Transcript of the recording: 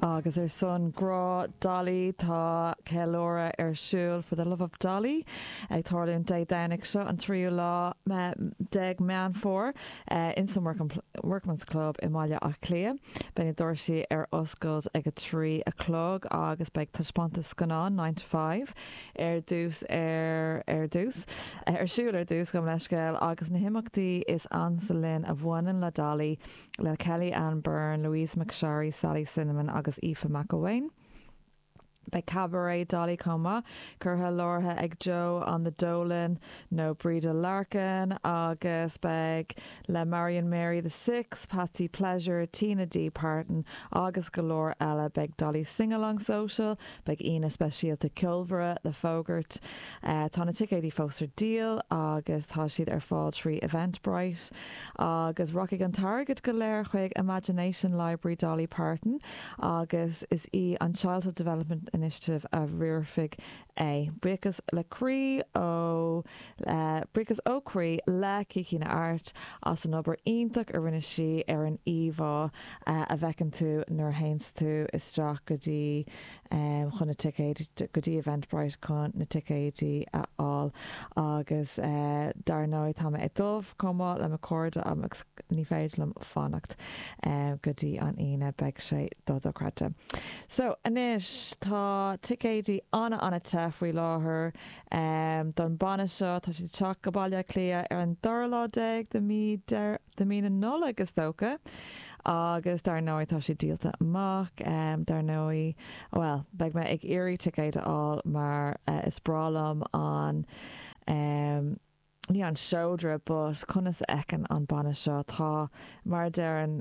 Agus ar son grá Dolly tá ceiliúradh ar siúl for the love of Dolly ag tarlúint Dé Domhnaigh seo an 3ú lá déag Meán Fómhair in san Workman's Club i mBaile Átha Cliath. Beidh na doirsí ar oscailt ag a trí a chlog agus beidh taispeántas scannán Nine to Five ar dtús ar ar dtús ar siúl ar dtús gabh mo leithscéal agus na himeachtaí is ansa linn a bhaineann le Dolly le Kelly-Anne Byrne, Louise McSharry, Sally Cinnamon agus Aoife McElwain. Beidh Cabaret Dolly chomh maith curtha láithrithe ag Joe on the Dolan nó Breda Larkin agus beidh le Marian Mary the Sixth, Patsy Pleasure, Tina D Parton agus go leor eile. Beidh Dolly Singalong Social, Beidh aíonna speisialta ceolmhara le fógairt. Tá na ticéidí fós ar díol agus tá siad ar fáil trí Eventbrite. Agus rachaidh an t-airgead go léir chuig Imagination Library Dolly Parton agus is í an Childhood Development Initiative a riarfaidh é. Buíochas le croí ó Buíochas ó chroí le Kiki Na Art as an obair iontach a rinne sí ar an íomhá. a bhfeiceann tú nuair a théanns tú isteach go dtí chun na ticéid, go dtí Eventbrite chun na ticéidí a fháil. Agus dar ndóigh tá mé ag dul chomh maith le mo chairde agus ní féidir liom fanacht go dtí an Aoine, beidh sé do-dochreidte. So anois tá ticéidí an-an-te faoi láthair don banna seo, tá siad ag teacht go Baile Átha Cliath ar an dara lá déag de mí Deireadh de mí na Nollag is dócha agus dar ndóigh tá siad díolta amach dar ndóigh bhuel beidh mé ag iarraidh ticéid a fháil mar is breá liom an ní an seodra but conas a fheiceann an banna seo tá mar a deireann